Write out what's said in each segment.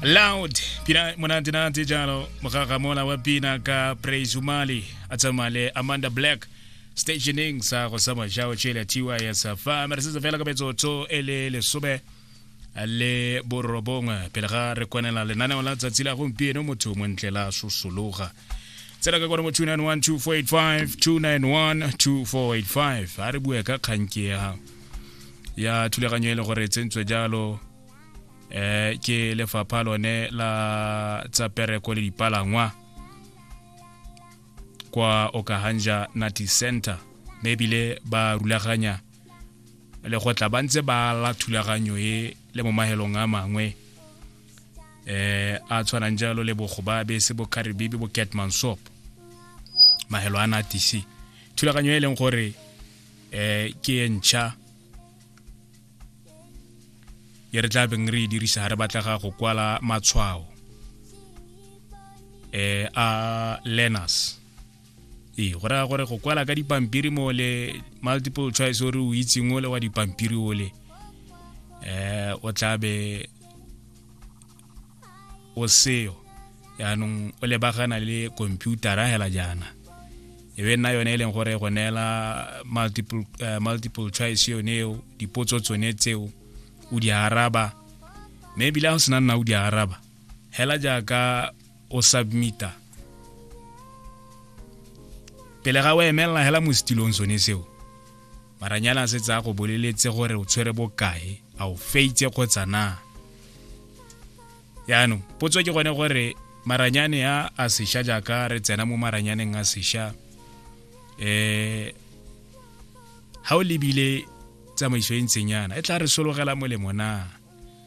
loud pina monate-nate jalo mogagamola wa pina ka praise umali a tsamaya le amanda black stationeng sa go sa majao tšele tiwa ya safa mere setse fela ka metsotso e le lesome le borobongwe pele ga re kwanela lenaneo la tsatsi la gompieno motho montle la sosologa tsela ka kone mo 291 2485 291 2485 a re bue ka kganke ya gago ya thulaganyo e le gore tsentswe jalo eh ke lefapha lone la tsa pereko le dipalangwa kwa okahanja nati center mme ebile ba rulaganya le go tla ba ntse ba la thulaganyo e le mo mahelong a mangwe eh a tshwanang jalo le bogobabe se bo karibibi bo catmansop mahelo a natisi thulaganyo e leng gore eh ke e ntšha e re tla beng re e dirisa ga re batlega go kwala matshwao eh a learners ee go raya gore go kwala ka dipampiri mo le multiple choice o re o itseng o le wa dipampiri o le um o tlabe o seo yaanong o lebagana le computera hela jaana e be nna yone e leng gore go neela multiple, uh, multiple choice yone eo dipotso tsone tseo o di araba mme ebile ga o sena nna o di araba hela jaaka o submita pele ga o emelela hela mo setilong sone seo Maranyana a setse a go boleletse gore o tshwere bokae a o feitse kgotsa na yaanong potso ke gone gore maranyane a a sesha jaaka re tsena mo maranyaneng a sesha um eh, ga o lebile tsamaiso e ntseng yana e tla re sologela molemo na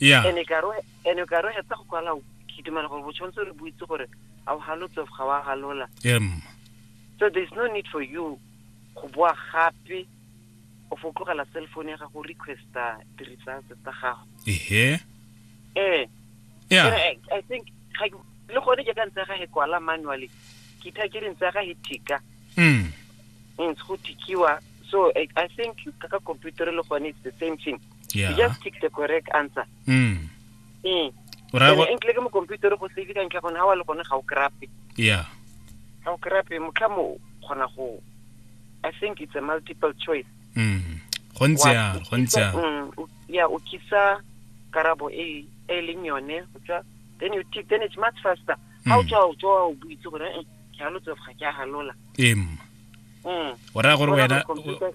yeah ene ka re ene ka re hetsa go kwala ke dumela gore botshwanetse re buitse gore a o halotse ga wa halola em so there is no need for you go boa gape o fo tlogela cell phone ya gago o requesta di-results tsa gago ehe ee yeah But I, I think ga ke- le gone ke ka ntse ga he kwala manually ke tha ke re ntse ga he tika mm ntse go tikiwa so I, i think ka ka computer le gone it's the same thing you yeah just pick the correct answer mm mm o ra go enkle ke mo computer go save ka ntle gone ha wa le gone ga o krape yeah ga o krape motlha mo gona go i think it's a multiple choice mm go ntse ya go ntse ya mm, o- yeah o kisa karabo e e leng yone go tswa then you tick then it's much faster ha o Mm. tswa o tswa o buitse gore eh ke a lotsofa ke a halola em mm o ra gore Bona wena gore computer-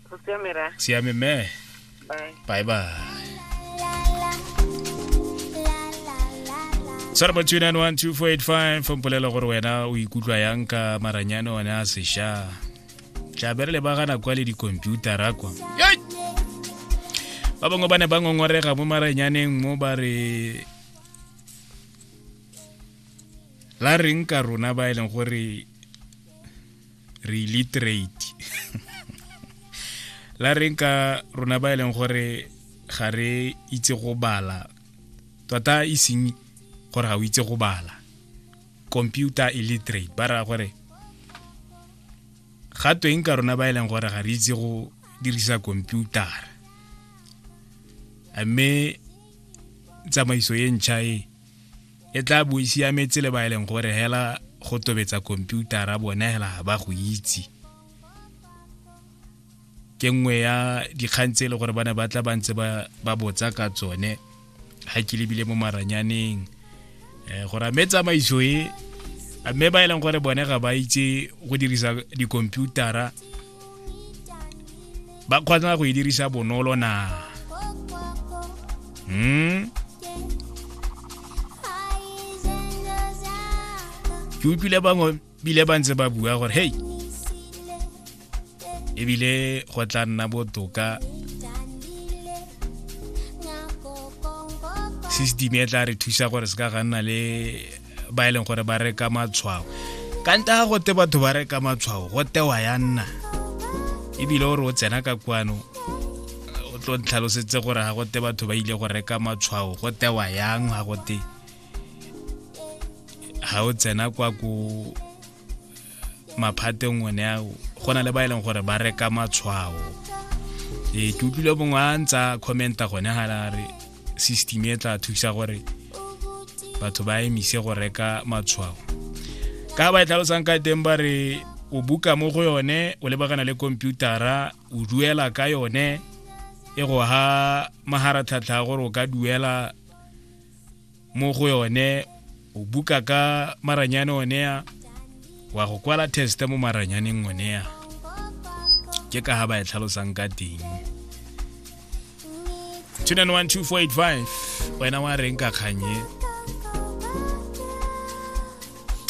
Go siame ra. siame me Bye. bye bye sara ba 2912485 mpolela gore wena o ikutlwa yang ka maranyane one a sesha tšabere le bagana kwa le dikomputara kwa Yai! ba bangwe ba ne ba ngongorega mo maranyaneng mo ba re la reng ka rona ba e leng gore re illiterate la reng ka rona ba e leng gore ga re itse go bala tota e seng gore ga o itse go bala computer illiterate ba raya gore ga tweng ka rona ba e leng gore ga re itse go dirisa computer mme tsamaiso e ntšha e e tla bo e siametse le ba e leng gore hela go tobetsa komputara bone hela ga ba go itse ke nngwe ya dikgang tse e le gore ba ne ba tla ba ntse ba botsa ka tsone ga ke lebile mo maranyaneng um gore a mme tsamaiso e a mme ba e leng gore bone ga ba itse go dirisa dikomputara ba kgona go e dirisa bonolo na hmm? ke utlwile bangwe bile ba ntse ba bua gore hei ebile go tla nna botoka system e tla re thusa gore se ka ga nna le ba e leng gore ba reka matshwao ka nta ga gote batho ba reka matshwao go tewa ya nna ebile o re o tsena ka kwano o tlo ntlhalosetse gore ga gote batho ba ile go reka matshwao go tewa yang ga gote ga o tsena kwa ko maphateng one a go na le ba e leng gore ba reka matshwao ee ke utlwile bongwe a ntsa commenta gone ga la re system e tla thusa gore batho ba emise go reka matshwao ka ba e tlhalosang ka teng ba re o buka mo go yone o lebagana le komputara o duela ka yone e go ha maharatlhatlha gore o ka duela mo go yone o buka ka maranyane onea wa go kwala teste mo maranyaneng onea ke ka ga ba e tlhalosang ka teng 2912485 wena wa reng ka kganye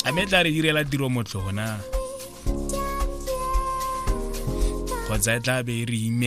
a me tla re direla tiro motlhona kgotsa e tla be e re ime